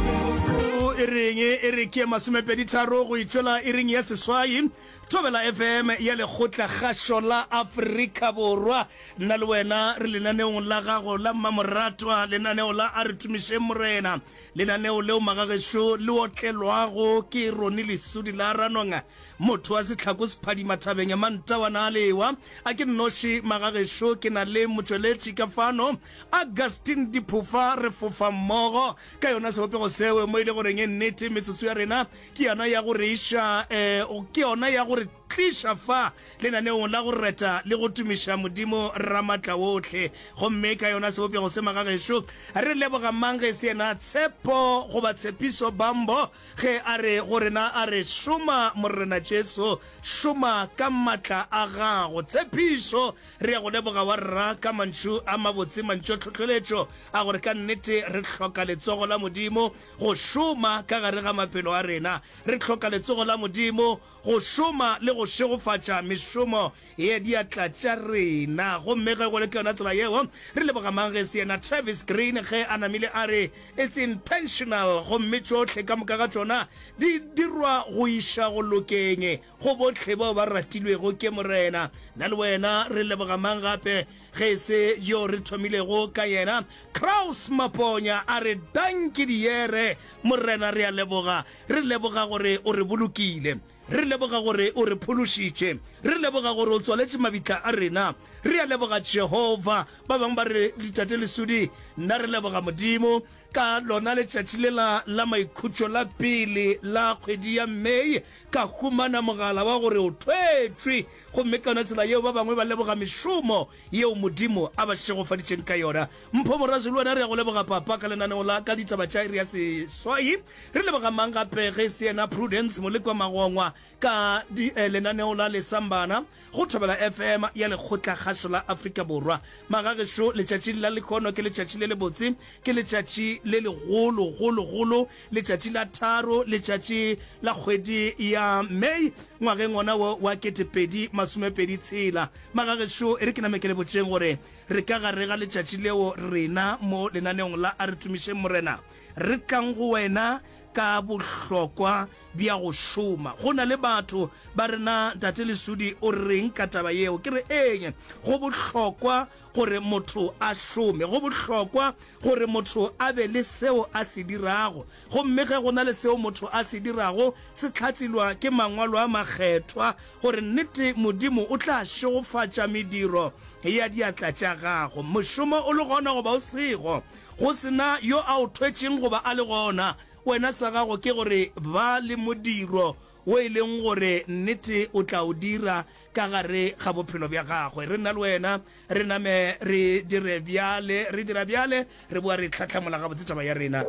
metsotso e reng e re ke masomepedi tharo go itšwela e reng ya seswai thobela fm ya lekgotla kgašo la afrika borwa nna le wena re lenaneong la gago la mmamoratwa lenaneo la a re tumišeng morena lenaneo leo magagešo le otlelwago ke rone lesudi la ranonga motho wa setlhako sephadima thabeng ya mantawana a lewa a ke nnoši magagešo ke na le motšweletši ka fano Augustine Diphofa, Re fofa mmogo ka yona sebopego seo, mo e le goreng e nnete metsotso ya rena ke yona ya go re iša, um ke yona ya go re tliša fa lenaneong la go reta le go tumiša Modimo Ramatlawohle. Gomme ka yona sebopego se, magagešo, re leboga mang ge e se yena Tshepo goba Tshepiso Bambo ge a re go rena, a re, Šoma, Morena Jesu, šoma ka matla a Gago. Tshepišo! Re ya go leboga wa rra ka mantšu a mabotse, mantšu a tlhohleletšo a gore ka nnete re hloka letsogo la Modimo go šoma ka gare ga maphelo a rena. Re hloka letsogo la Modimo go šoma le go šegofatša mešomo ya diatla tša rena. Gomme ge go le ka yona tsela yeo, re leboga mang ge e se yena Travis Greene ge a namile a re, It's intentional, gomme tšohle ka moka ga tšona di dirwa go iša go lokeng. Go bohle bao ba ratilwego ke Morena, nna le wena re leboga mang gape ge e se yo re thomilego ka yena, Kraus Maponya. A re, Dankie, diere. Morena, re a leboga. Re leboga gore o re bolokile. Re leboga gore o re phološitše. Re leboga gore o tswaletše mabitla a rena. Re a leboga, Jehofa. Ba bangwe ba re, Ditate Lesudi, nna re leboga Modimo ka lona letšatši lela la maikhutšo la pele la kgwedi ya May. Ka humana mogala wa gore o thwetšwe, gomme ka yona tsela yeo ba bangwe ba leboga mešomo yeo Modimo a ba šegofaditšeng ka yona. Mpho Morazo le wena re ya go leboga Papa ka lenaneong la ka Ditaba tša Iri ya Seswai. Re leboga mang gape ge e se yena Prudence Molekwa Magongwa ka lenaneong la Lesambana. Go thobela FM ya Lekgotlakgašo la Afrika Borwa. Magagešo, letšatši la lehono ke letšatši le lebotse, ke letšatši le legolo, golo, golo, letšatši la tharo, letšatši la kgwedi ya May, ngwageng wona wo wa ketepedi masomepedi tshela. Magagešo, e re ke name ke le botšeng gore re ka gare ga letšatši leo rena mo lenaneong la A Re Tumišeng Morena re tlang go wena ka bohlokwa bja go šoma. Go na le batho ba re, Na Ntate Lesudi o reng ka taba yeo? Ke re, Eeñe, go bohlokwa gore motho a šome. Go bohlokwa gore motho a be le seo a se dirago. Gomme ge go na le seo motho a se dirago, se hlatselwa ke Mangwalo a Makgethwa, gore nnete Modimo o tla šegofatša mediro ya diatla tša gago. Mošomo o le gona goba o sego, go se na yo a o thwetšeng goba a le gona, Wena sa gago ke gore ba le modiro wo e leng gore nnete o tla o dira ka gare ga bophelo bja gagwe. Re nna le wena, re name re dire bjale, re dira bjale, re boa re hlahlamula gabotse taba ya rena.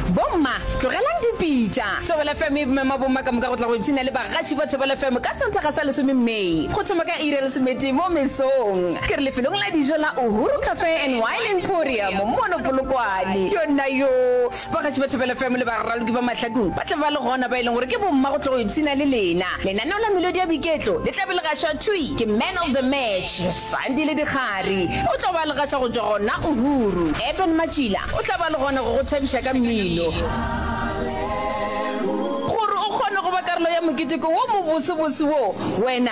Bomma, tlogelang dipitša. Thobela FM e mema bomma ka moka go tla go ipshina le bagaši ba Thobela FM ka Sontaga sa lesome May, go thoma ka iri ya lesometee mo mesong. Ke re lefelong la dijo la Uhuru Cafe and Wine, Emporium mono Polokwane. Yonnayoo, bagatši ba Thobela FM le baraloki ba Mahlakong ba tla ba le gona, ba e leng gore ke bomma go tlo go ipshina le lena. Lenaneo la Melodi ya Boiketlo le tla be le gašwa thwi ke Man of the Match, Sandile Dikgari. O tlo ba le gaša go tšwa go na Uhuru. Eben Matšila o tla ba le gona go go thabiša ka mmino. Gore o kgone go ba karolo ya moketeko wo mobosobose wo, wena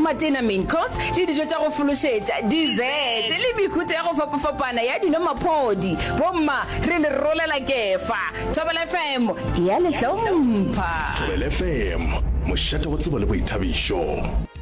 Matena, main course, le dijo tša go fološetša, dessert, le mehuta ya go fapafapana ya dino-maphodi. Bomma, re le rolela kefa. Thobela FM e a le hlompha. Thobela FM, mošate wa tsebo le boithabišo.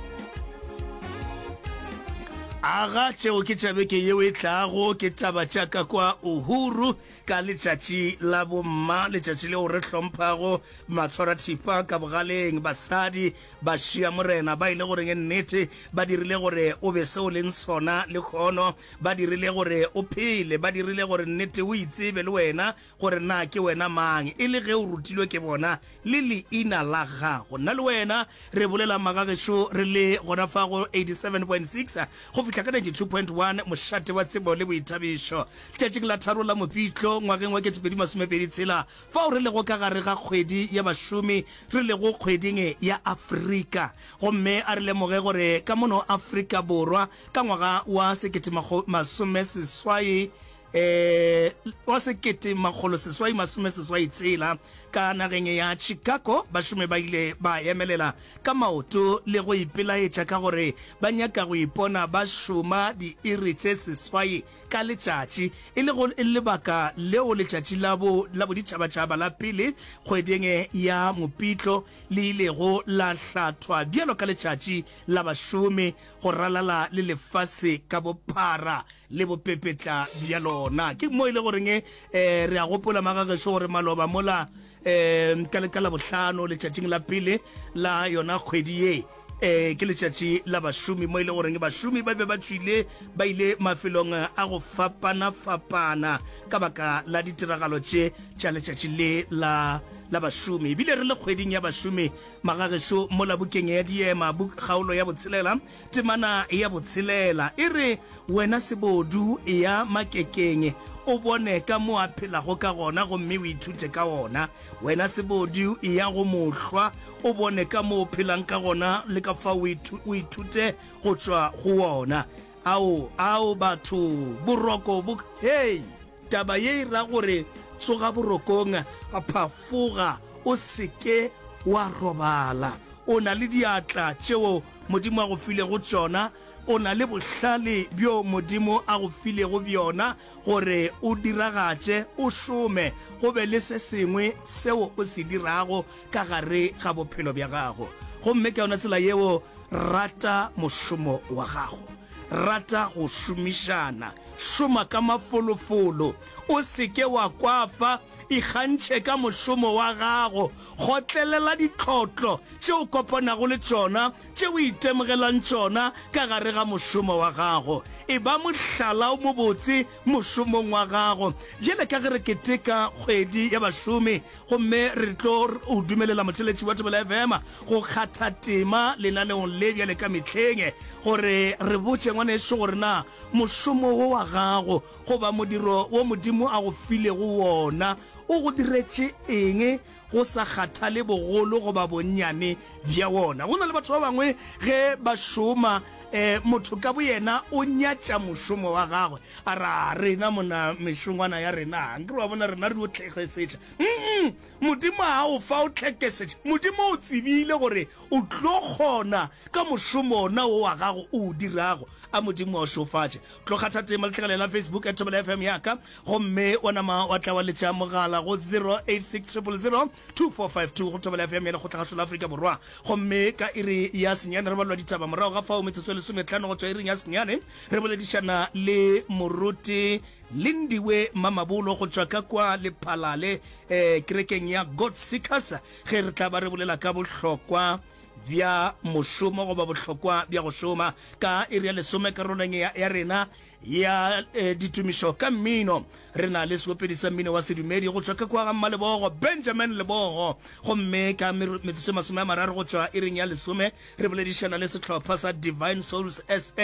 Aga tšeo ke tša beke yeo e tlago, ke taba tša ka kwa Uhuru ka letšatši la bomma, letšatši leo re hlomphago matshwarathipa ka bogaleng, basadi, Ba šia Morena, ba ile gore ke nnete, ba dirile gore O be se O leng sona, lehono. Ba dirile gore O phele, ba dirile gore nnete O itsebe le wena, gore na ke wena mang, e le ge O rutilwe ke bona, le Leina la Gago. Nna le wena re bolela maga gešo re le gona fa go 87.6 go fihla ka 92.1, mošate wa tsebo le boithabišo, letšatšing la tharo la Mopitlo, ngwageng wa 2026. Fao re lego ka gare ga kgwedi ya bašomi, re lego kgweding e ya Afrika, gomme a re lemoge gore ka mono Afrika Borwa ka ngwaga wa sekete makgolo masome seswai, eh, wa sekete makgolo seswai masome seswai tshela, ka nageng ya Chicago, bašomi ba ile ba emelela ka maoto le go ipelaetša ka gore ba nyaka go ipona ba šoma diiri tše seswai ka letšatši, e lego lebaka leo letšatši la bo la boditšhabatšhaba la pele kgweding ya Mopitlo le ilego la hlathwa bjalo ka letšatši la bašomi go ralala le lefase ka bophara le bopepetla bja lona. Ke mo e le goreng eh, re a gopola magagešo gore maloba mola eh, ka, ka labohlano letšatšing la pele la yona kgwedi ye eh ke letšatši la bašomi mo ile e goreng bašomi ba be ba tswile ba ile mafelong a go fapana fapana ka baka la ditiragalo tše tša letšatši le la la bašomi ebile re le kgweding ya bašomi magagešo mo la bukeng ya diema buk kgaolo ya botshelela temana ya botshelela e re wena sebodu ya makekeng o bone ka mo a phelago ka gona gomme o ithute ka ona Wena sebodi, eya go mohlwa o bone ka mo o phelang ka gona le ka fa o ithute go tšwa go wona. Ao, ao, batho, boroko bo, hei! Taba ye e ra gore tsoga borokong, phafoga, o se ke wa robala. O na le diatla tšeo Modimo a go filego tšona, o na le bohlale bjo Modimo a go filego bjona. Gore o diragatše, o šome, go be le se sengwe seo o se dirago ka gare ga bophelo bja gago. Gomme ka yona tsela yeo, rata mošomo wa gago. Rata go šomišana. Šoma ka mafolofolo. O se ke wa kwafa. Ikgantšhe ka mošomo wa gago. Kgotlelela ditlotlo tše o kopanago le tšona tše o itemogelang tšona ka gare ga mošomo wa gago. Eba mohlala o mobotse mošomong wa gago. Bjale ka ge re keteka kgwedi ya bašomi gomme re tlo o dumelela motheletši wa Thobela FM go kgatha tema lenaneong le bjale ka mehleng, gore re botše ngwanešu gore na mošomo wo wa gago goba modiro wo Modimo a go filego wona o go diretše eng Go sa kgathale bogolo goba bonnyane bja wona, go na le batho ba bangwe ge ba šoma, eh, motho ka boyena o nyatša mošomo wa gagwe, a re, A rena mona, mešongwana ya rena, nke re wa bona, rena re yo tlhekesetša. Nnng! Modimo a o fa o tlhekesetša. Modimo o tsebile gore o tlo kgona ka mošomo wona wo wa gago o o dirago. A Modimo a o šofatše. Tlo kgatha tema, letlhakaleng la Facebook at Thobela FM ya ka. Gomme wa nama wa tla wa letša mogala go 0860002452 go thobela FM ya Lekgotlagašo la Afrika Borwa. Gomme ka iri ya senyane re balwa ditaba, morago ga fao metsotso e lesometlhano go tšwa iring ya senyane re boledišana le moruti Lindiwe Mamabolo go tšwa ka kwa Lephalale eh, kerekeng ya God Seekers ge re tla ba re bolela ka bohlokwa bja mošomo goba bohlokwa bja go šoma. Ka iri ya lesome karolong ya, ya rena ya eh, ditumišo ka mmino re na le seopedi sa mmino wa sedumedi go tšwa ka kwa ga mmalebogo benjamin lebogo gomme ka metsotso e masome a mararo go tšwa ireng ya lesome re boledišana le setlhopha sa divine souls sa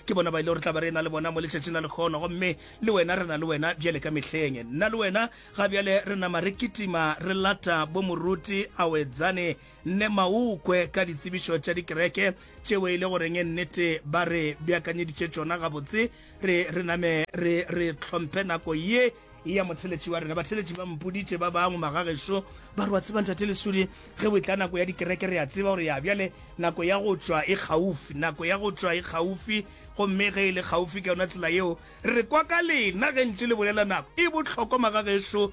ke bona ba ile gore tla ba re na le bona mo letšatšing la lekgono gomme le wena re na le wena bjale ka mehleng nna le wena ga bjale re nama re kitima re lata bo moruti a wetsane Nne Maukwe ka ditsebišo tša dikereke tšeo e le go reng e nnete ba re beakanyeditše tšona gabotse. Re, re name re, re hlomphe nako ye ya motheletši wa rena. Batheletši ba mpoditše ba bangwe, magagešo, ba re, Wa tseba, Ntate Lesudi, ge go etla nako ya dikereke, re a tseba gore ya bjale nako ya go tšwa e kgaufsi. Nako ya go tšwa e kgaufsi, gomme ge e le kgaufsi ka yona tsela yeo, re kwa ka lena ge ntše le bolela nako. E bohlokwa, magagešo.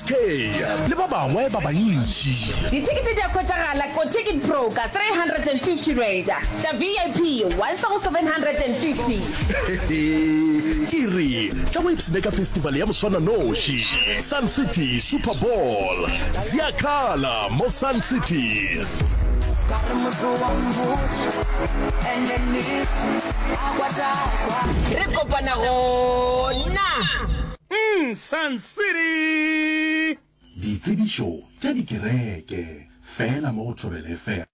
Ee, le ba bangwe ba bantši. Dithekete di a hwetšagala ko Ticket Broker, R350, tša VIP, 1750. Ke re, tla o ipshine ka festival ya moswananoši, Sun City Super Bowl. Zia khala mo Sun City. Re kopana gona. City! Ditsebišo tša dikereke fela mo go Thobela FM.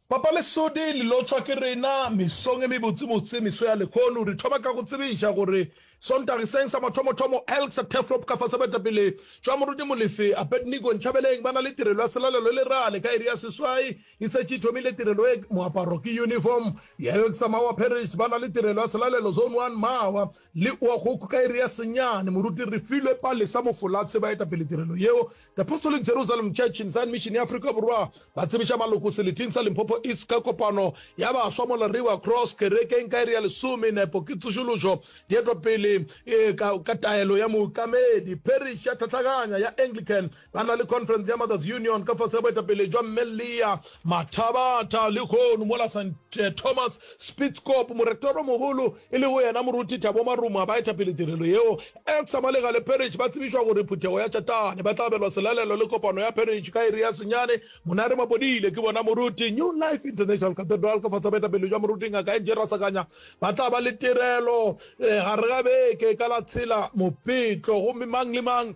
Papa Lesodi le lotšwa ke rena mesong e mebotsebotse, meso ya lekhono. Re thoma ka go tsebiša gore Sontageseng sa mathomothomo, Elks Turfloop ka fase baetapele tšwa Moruti Molefe, Abednego Nchabeleng ba na le tirelo ya selalelo le rale ka iri ya seswai. E setše e thomile tirelo ye. Moaparo ke uniform. Di-Elks Mawa Parish ba na le tirelo ya selalelo, Zone One Mawa. Le oa goku ka iri ya senyane, moruti Refilwe Palesa Mofolatse ba etapele tirelo yeo. The Apostolic Jerusalem Church in Zion Mission ya Afrika Borwa ba tsebiša maloko seleting sa Limpopo East ka kopano ya baswa mola River Cross Kerekeng ka iri ya lesome. Nepo ke tsošološo di etwa pele ka taelo ya mookamedi. Parish ya Tlhatlhaganya ya Anglican Ba na le Conference ya Mothers Union ka fase ga boetapele jwa Mme Leah Mathabatha. Lehono mola St. Thomas, Spitzkop, Moretoromogolo e lego yena Moruti Thabo Maruma ba etapele tirelo yeo, Elsa Malegale Parish ba tsebišwa gore phuthego ya Tšatane ba tla abelwa selalelo le kopano ya Parish ka iri ya senyane. Monare Mapodile ke bona Moruti. New Life International Cathedral ka fase ga boetapele jwa Moruti Ngaka Angie Rasakanya ba tla ba le tirelo gare ga beke ka la tshela Mopetlo. Gomme mang le mang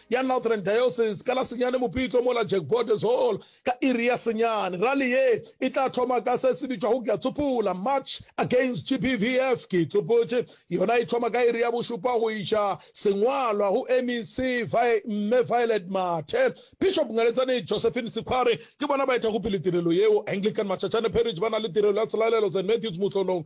ya Northern Diocese ka la senyane Mopitlo mola Jack Borders Hall ka iri ya senyane. Rally ye e tla thoma ka se se bitšwago Ke a Tsopula, March Against GBVF. Ke Itsopotše yona e thoma ka iri ya bošupa go iša sengwalwa go MEC Mme Violet Mathe. Bishop Ngaletsane Josephine Sekhware ke bona ba etago pele tirelo yeo. Anglican Macacane Parish ba na le tirelo ya Tshelalelo Saint Matthews Mohlonong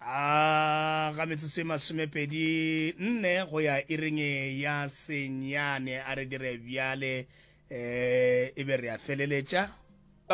a ga metsotso e masomepedi nne go ya irenge ya senyane a re dire bjale um e be re a feleletša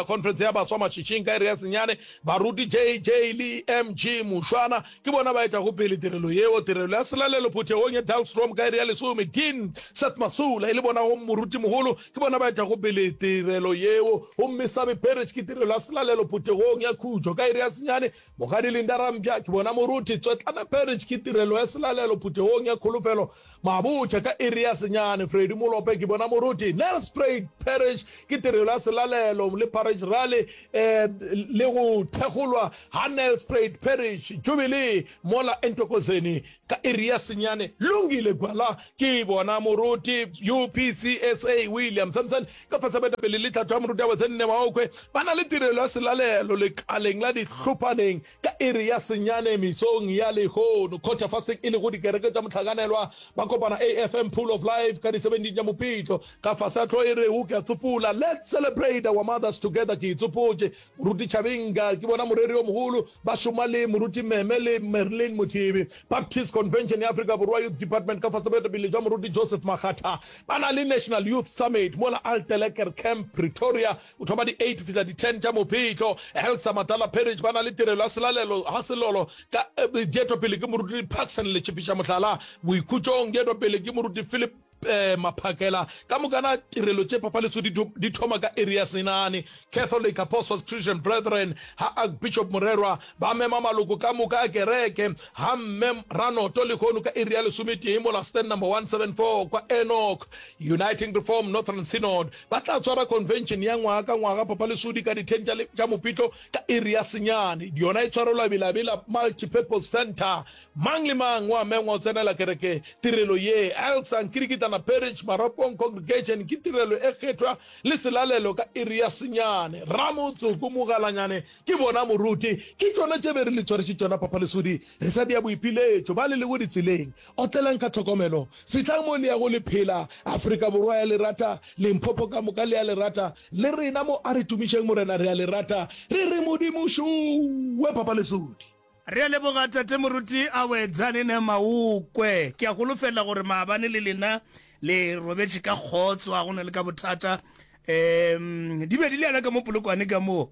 conference ya baswa mašwišing ka ere ya senyane baruti jj le mg mošwana ke bona ba etago pele tirelo yeo tirelo ya selalelo phuthegong ya dalstrom ka ere ya lesome dean seth masula e le bonago morutimogolo Ke bona ba etlago pele tirelo yeo, gomme Sabe Parish ke tirelo ya selalelo phuthegong ya khutšo ka iri ya senyane. Mokgadi Linda Rampya, ke bona moruti. Tswetlana Parish ke tirelo ya selalelo phuthegong ya kholofelo mabotšha ka iri ya senyane. Freddie Molope, ke bona moruti. Nelspruit Parish ke tirelo ya selalelo le Parish Rally um le go thekgolwa ga Nelspruit Parish Jubilee mola eNthokozeni. Ka iri ya senyane, Lungile Gwala, ke bona moruti UPCSA William Samson, ka fase baetapele le tlhatho ya moruti Awe Tsenne Maokwe, ba na le tirelo ya selalelo lekaleng la Dihlopaneng ka iri ya senyane mesong ya lehono. Kgotšafaseng e lego dikereke tša mohlakanelwa, ba kopana AFM Pool of Life ka di 17 tša Mopitlo, ka fase ga tlhoo e rego Ke a Tsopola, Let's Celebrate Our Mothers Together, Ke Itsopotše. Moruti Chabinga ke bona moreri yo mogolo, ba šoma le Moruti Meme le Merlyn Mothibi. Baptist Convention ya Afrika Borwa Youth Department ka fase boetapele jwa Moruti Joseph Makgatha ba na le National Youth Summit mola Altelegger Camp, Pretoria go thoma di 8 go fihla di 10 tša Mopitlo. Helsa Matala Parish ba na le tirelo ya selalelo ga selolo ka di etwa pele ke Moruti Paxson Letšhipiša Mohlala. Boikhutšong di etwa pele ke Moruti Philip. eh, maphakela ka mokana tirelo tše papaleso di thoma ka iri ya senane catholic apostles christian brethren ha archbishop morerwa ba mema maloko ka moka a kereke ha mme ranoto lehono ka iri ya lesometee mola stand number 174 kwa enoch uniting reform northern synod ba tla tswara convention ya ngwaga ka ngwaga papalesodi ka dithen tša mopitlo ka iri ya senyane yona e tshwarelwa belabela multipurpose center Mang le mang o a mengwa go tsenela kereke tirelo ye. Elsa Nkirikitana Parish, Maropong Congregation, ke tirelo e kgethwa le selalelo ka iri ya senyane. Ramotsoko Mogalanyane ke bona moruti. Ke tšona tše be re le tshwariše tšona Papa Lesodi re sa dia boipiletšo. Ba le lego ditseleng, otlelang ka tlhokomelo. Fihlang mo le yago le phela. Afrika Borwa ya le rata, Limpopo ka moka le a le rata. Le rena mo Aritumišeng Morena re a le rata. Re re Modimo šowe Papa Lesodi. Re a leboga Tate Moruti Awe Dzanine Maukwe. Ke a golofelela gore maabane le lena le robetše ka kgotso, ga go na le ka bothata. Um, di be di le yana ka mo Polokwane ka moo.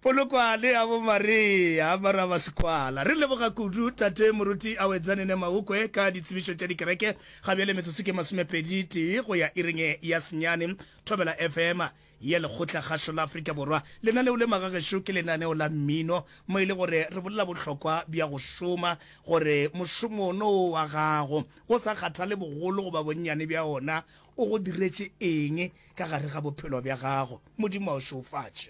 Polokwane ya bo Maria, mara ba sekwala. Re leboga kudu Tate Moruti Awe Dzanine Maukwe ka ditsebišo tša dikereke. Ga bjale metsotso ke masomepedi tee go ya iring ya senyane. Thobela FM. ya Lekgotlakgašo la Afrika Borwa, lena leo le magagešo ke lenaneo la mmino mo e le gore re bolela bohlokwa bja go šoma, gore mošomo ono o wa gago, go sa kgathale bogolo goba bonnyane bja ona, o go diretše eng ka gare ga bophelo bja gago. Modimo a o šeofatše.